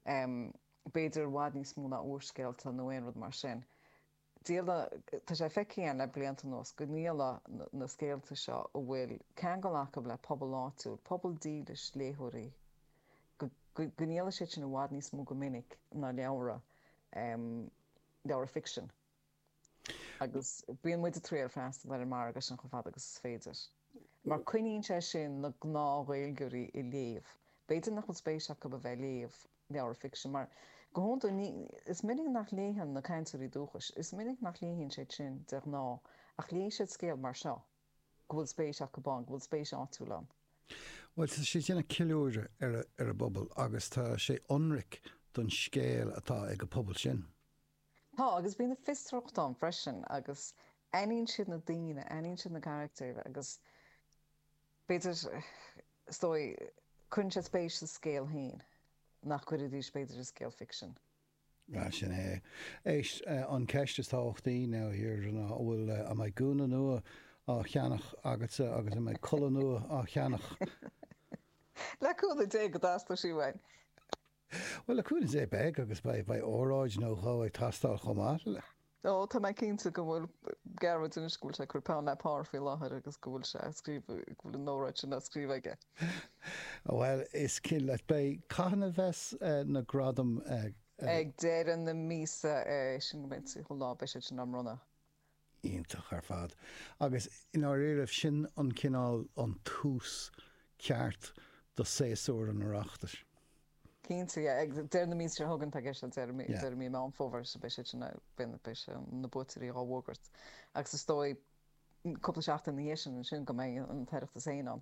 b'fhéidir i bhfad níos mó ná úrscéalta nó aon rud mar sin. Tá sé feicthe againn le blianta anuas go ndíoladh na scéalta seo a bhfuil ceangal acu le pobal áitiúil, pobal dílis léitheoirí, go ndíoladh siad sin i bhfad níos mó go minic ná leabhra, leabhra ficsin. agus bíonn muid ag triail freastal ar an margadh sin chomh fada agus is féidir, mar coinníonn sé sin na gnáth-Ghaeilgeoirí ag léamh. B'fhéidir nach bhfuil spéis acu a bheith ag léamh leabhar ficsin, mar go hiondúil ní, is minic nach léann na cainteoirí dúchais, is minic nach léann siad sin de ghnáth, ach léifidh siad scéal mar seo, go bhfuil spéis acu ann, go bhfuil spéis áitiúil ann. Bhuel, tá sé ag déanamh ceiliúradh ar a bpobal agus tá sé ionraic don scéal atá ag an bpobal sin. Tá, agus bíonn an fiosracht ann freisin agus aithníonn siad na daoine, aithníonn siad na carachtair agus b'fhéidir, is dóigh, cuireann siad spéis sa scéal féin nach gcuirfidís b'fhéidir i scéal ficsin. Ah, sin é. Éist, an cheist is tábhachtaí, now here, ná an bhfuil, an mbeidh gúna nua á cheannach agatsa agus an mbeidh culaith nua á cheannach? Le cúnamh Dé go dteastóidh sí uainn. Bhuel, le cúnamh Dé beidh agus beidh óráid nó dhó ag teastáil chomh maith. Ó, tá mé cinnte go bhfuil Gearóid anois, go bhfuil sé ag cur peann le pár faoi láthair agus go bhfuil sé á scríobh, go bhfuil an óráid sin á scríobh aige. Bhuel, is cinnte leat, beidh. Cathain a bheas na gradaim? Ag deireadh na míosa, é sin go mbeidh an 30ú lá, beidh siad sin á mbronnadh. Iontach ar fad. Agus i ndáiríribh, sin an cineál, an tús ceart do séasúr an Oireachtais. Cinnte, yeah. Ag deireadh na míosa seo chugainn, atá i gceist liom, deireadh mí, deireadh mí Meán Fómhair, so beidh siad sin, beidh, beidh sé, na buaiteoirí dhá bhfógairt. Agus is dóigh, cúpla seachtain ina dhiaidh sin ansin go mbeidh an tOireachtas féin ann.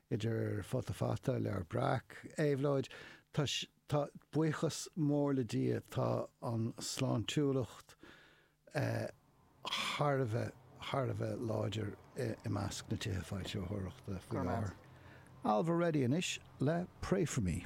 Idir Futa Fata, Leabhar Breac, Éabhlóid, tá, tá, buíochas mór le Dia, tá an sláintiúlacht thar a bheith, thar a bheith láidir i measc na tithe foilsitheoireachta faoi láthair. Ailbhe Reddy anois le Pray For Me.